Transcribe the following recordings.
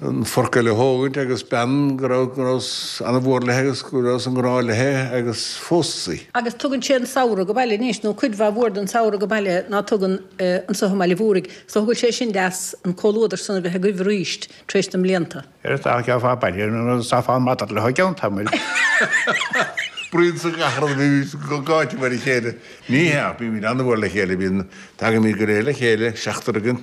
an forc eile a thógaint agus bean go raibh go rabhas an-mhór léithe agus go rabhas i ngrá léithe agus phósas í. Agus tugann sé an samhradh age baile anois, nó cuid mhaith mhór den samhradh age baile ná tugann anseo i mBaile an Mhúraigh. Is dóigh go bhfuil sé sin deas an comhluadar san a bheith agaibh arís tar éis na mblianta. Ar feadh ghearr fá baile nó is tá fán madad leo i gceann tamaill. Bruíon sa gcathair a bhímid go gáite mar a chéile. Ní hea, bímid an-mhór le chéile, bíonn, tagaimid go réidh le chéile, seachtar againn,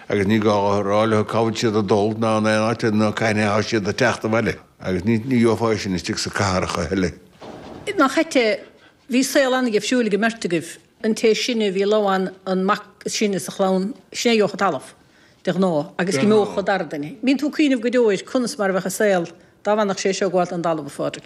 Agus ní gá a rá leo cá bhfuil siad ag dul, ná in aon áit eile, ná cathain a thá siad ag teacht abhaile. Agus ní gheofá é sin istigh sa cathair choíche eile. Nach ait é, bhí saol an-dhifriúil ag an mbeirt agaibh. An té is sine a bhí ag lobhadh an mac is sine sa chlann, sin é a gheobhadh an talamh, de ghnáth, agus d'imeodh an dara duine. An mbíonn tú ag cuimhneamh go deo ar conas mar a bheadh an saol dá bhfanfadh sé seo ag gabháilt don dtalamh, a Phádraig.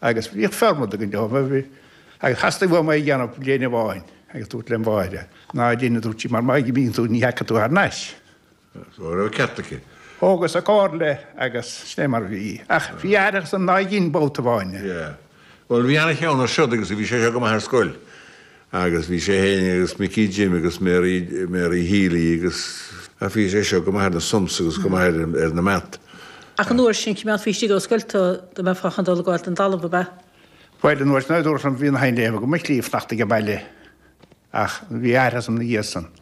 agus bhíodh formad againn dóibh agus theastaigh uaim é a dhéanamh bliain amháin agus dúrt lem mháthair, Ná déan, a dúirt sí, mar má imíonn tú ní thiocfaidh tú thar n-ais. Go raibh ceart aici. Thógas a comhairle agus sin é mar a bhí. Ach bhí aithreachas ina dhiaidh sin babhta amháin. Yeah. Bhuel, bhí ana-cheann air siúd agus bhí sé seo go maith ar scoil. Agus bhí sé fhéin agus Micí Jim agus Mary, Mary Healy agus, ach bhí sé seo go maith ar na sums agus go maith ar, ar na maths. Ach an uair sin, coimeádfaí istigh ón scoil tú dá mbeifeá chun dul ag gabháil don dtalamh, ab ea? Bhuel, an uair sin, dúirt an bhí an Hind Aoibhinn gur mhaith liom fanacht age baile, ach bhí aithreachas orm ina dhiaidh san.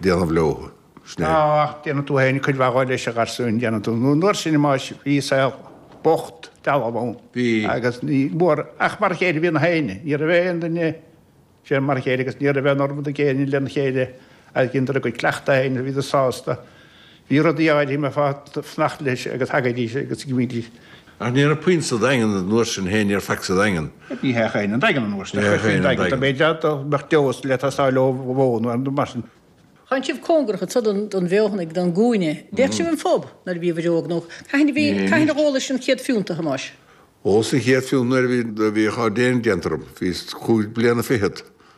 déanamh leo, is ea. Ná déanann tú fhéin cuid mhaith dhó leis, a gharsúin, déanann tú, nó an uair sin, mar bhí an saol bocht, dealbh ann. Bhí. Agus ní bhfuair, ach mar a chéile a bhí gach éinne, ní raibh aon duine, sin mar a chéile, agus ní raibh aon fhormad ag éinne lena chéile, agus dheineadar a gcuid cleachtaidh fhéin, bhíodar sásta, Bhí rudaí áirithe a mbeifeá ag fanacht leis agus thagaidís agus d'imídís. Ach ní raibh puinn sa Daingean an uair sin féin, ní raibh faic sa Daingean. Ní hea féin an Daingean an uair sin, chuirfí an Daingean, b'fhéidir dá mbeadh dose ag teastáil ó bhoin nó rud mar sin. Tánn sibh cóngarach anseo don bhFeothanaigh, don gCúinne, an dtéadh sibh 'on phub nuair a bhíobhair óg, nó cathain a bhí, cathain a dh'ólais an chéad phiúnt, a Thomáis? Dh'ólas an chéad phiúnt nuair a bhí, bhíodh ár dtéarnamh déanta orm, bhíos cúig bliana fichead.